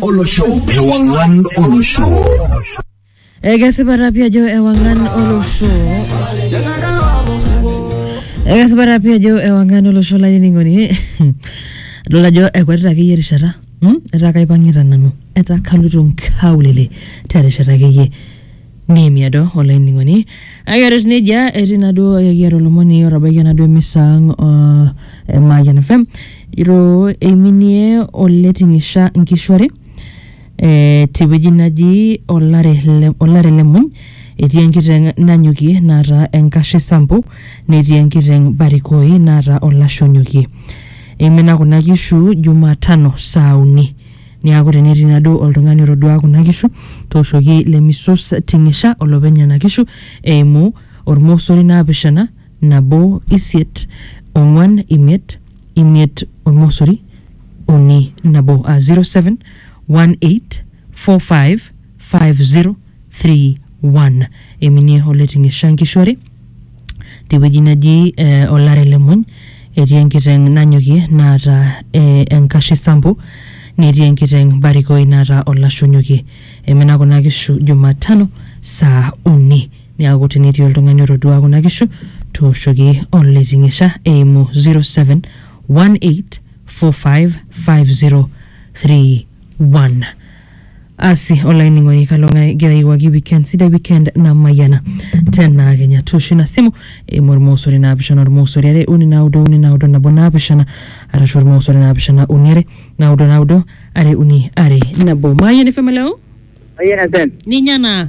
olosho ewang'an olosho ekesipata pii ajo ewang'an olosho ekesipata pii ajo ewang'an olosho lainining'oni adol ajo ekwetita akeyie erishata hmm? etaa kaipang'ita nanu etaa kaloito nkaulele terishata akeyie Neimie do olainining'oni. Kake ore etiu nejia, etii naaduo ekiata olomoni otabaikia naaduo emisa ang o e Mayian FM. Ejo eiminie oleting'isha nkishu are eh, tewueji naji olare le olare le muny. Etii enkiteng nanyokie naata enkashe sampo, netii enkiteng barikoi naata olashe onyokie. Eimina kuna kishu jumatano saa uni. Niaku tenetii naduo oltung'ani otoduaa kuna kishu, tooshoki Lemisus Ting'isha olopeny nena kishu eimu olmosori naapishana, nabo, isiet, ong'uan, imiet, imiet, olmosori, uni, nabo aa 07 18 45 5031 eminie oleting'isha nkishu are tewueji naji eh, olare le muny etii enkiteng nanyokie naata eh, enkashe sampo netii enkiteng barikoi naata olashe onyokie emina kuna kishu jumatano saa uni niaku tenetii oltung'ani otodua kuna kishu tooshoki oleting'isha eimu 0718455031 Asi olainining'oni kalo ng'ae igira aiwuaki weekend sidai weekend namayiana tenaa kenya tooshu ina simu eimu ormosori naapishana ormosori are uni naudo uni naudo nabo naapishana arashu ormosori naapishana uni are naudo naudo are uni are nabo maayeni femeleo Ayen FM. ninye naa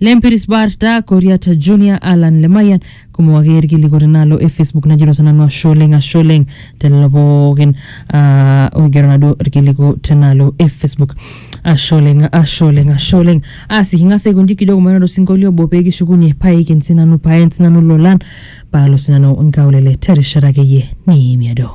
Lempiris Barta, Koriata Junior, Alan Lemayan, kumok ake irkilikuat enaalo e Facebook najito sinanu ashe oleng ashe oleng telelo pookin ah, oigero naduo irkiliku tenaalo e Facebook. Ashe oleng, ashe oleng, ashe oleng. Asi king'as aikonji kijo kumaina osinkolio obo pee kishukunye paiken sinanu paen sinanu lolan paalo sinanu nkaulele terishata akeyie nimiado.